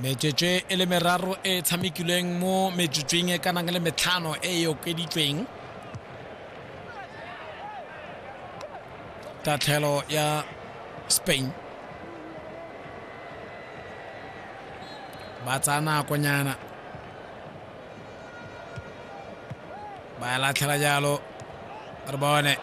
metswetswe e le meraro e e tshamekilweng mo metsotsweng e ka nang le metlhano e e okeditsweng tatlhelo ya spain ba tsaya nakonyana ba ya latlhela jalo re bone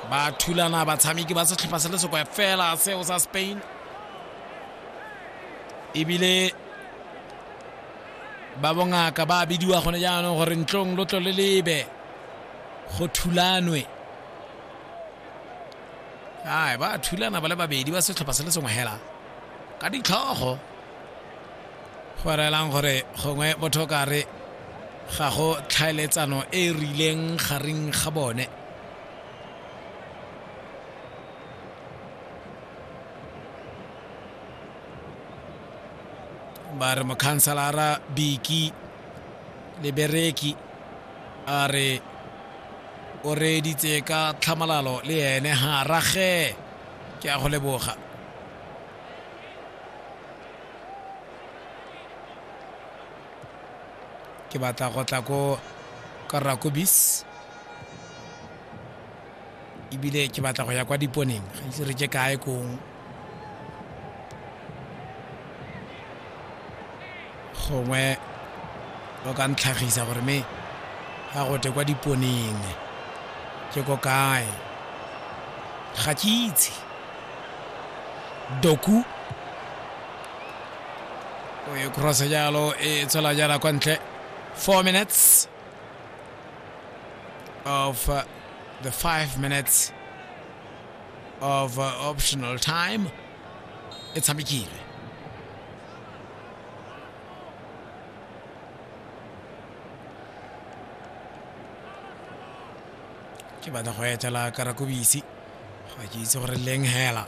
ba thulana batshameki ba setlhopha se le sekwe fela seo sa spain ebile ba bongaka ba bidiwa gone jaanong gore ntlong lo tlo le lebe go thulanwe ai ba thulana ba le babedi ba setlhopha se le sengwe hela ka ditlhogo go reelang gore gongwe motho ka re ga go tlhaeletsano e e rileng gareng ga bone ba re mokhanselara biki lebereki a re o reeditse ka tlhamalalo le ene ga rage ke a go leboga ke batla go tla ko ka rakobis ebile ke batla go ya kwa diponeng ga ise re je kae kong gongwe o ka ntlhagisa gore me ga gote kwa diponeng ke ko kae ga ke itse doku o e cross jalo e tswela jala kwa ntle four minutes of uh, the five minutes of uh, optional time e tshamekile ke batla go etela karakobisi ga ke itse gore leng hela